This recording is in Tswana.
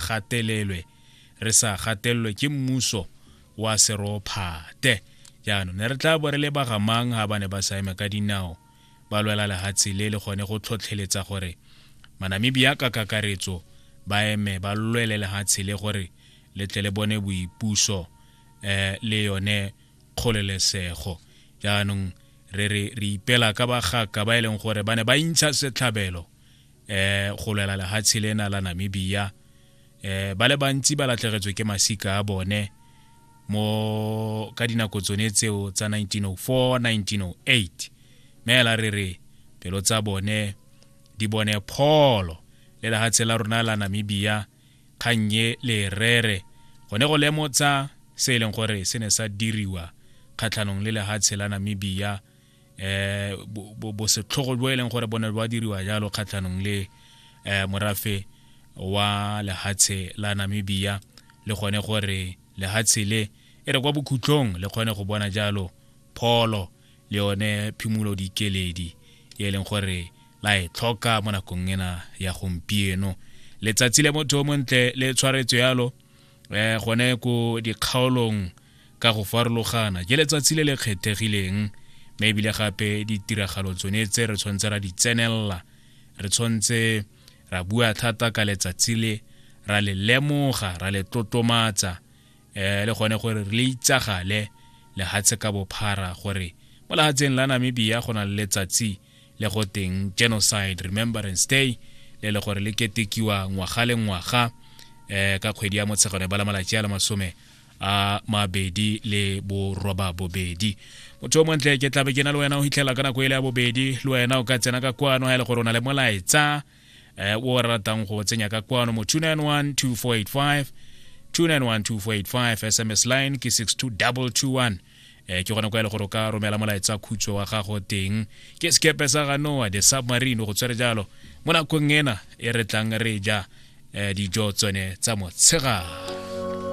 gatelelwe re sa gatelelwe ke mmuso wa serophate jaanong ne re tla bo re le bagamang ga ba ne ba sa eme ka dinao ba lwela lehatshe le le gone go tlhotlheletsa gore manamibia ka kakaretso ba eme ba lwele lehatshe le gore le tle le bone boipuso um le yone kgolelesego jaanong re re re ipela ka bagaka ba e leng gore ba ne ba intsha setlhabelo eh go lwela lehatshe lena la Namibia eh ba le bantsi ba latlhegetswe ke masika a bone mo ka dinako tsone tseo tsa 1904 1908 meela re re pelo tsa bone di bone pholo le lehatshe la rona la Namibia kgannye le rere gone go lemotsa se e leng gore se ne sa diriwa kgatlhanong le lehatshe la Namibia eh bosetlhogo bo e leng gore bone ba diriwa jalo kgatlhanong le eh morafe wa lehatshe la Namibia le gone gore lehatshe le e re kwa bokhutlong le kgone go bona jalo pholo le yone phimolo dikeledi e leng gore la e tlhoka mo nakong ena ya gompieno letsatsi le motho o montle le tshwaretswe yalo eh gone ko dikgaolong ka go farologana ke letsatsi le le kgethegileng mme ebile gape ditiragalo tsone tse re tshwanetse ra di tsenelela re tshwanetse ra bua thata ka letsatsi le ra le lemoga ra le tlotlomatsa um le gone gore re le itsagale lehatshe ka bophara gore mo lehatsheng la namibia go na le letsatsi le go teng genocide remembrance day le le gore le ketekiwa ngwaga le ngwaga um ka kgwedi ya motshegano e bala malatsi a le masome a mabedi le boroba bobedi motho o montle ke tlabe ke na le wena o hitlhela ka nako e le ya bobedi le wena o ka tsena ka kwano ga e le gore o na le molaetsa eh, o re ratang go tsenya ka kwano mo 291 2485 291 2485 sms line ke 62221 eh ke gona kwa ele gore o ka romela molaetsa khutso wa gago teng ke sekepe sa ga noa the submarine go tswere jalo mo nakong ena e re tlang re ja eh, dijo tsone tsa motshegare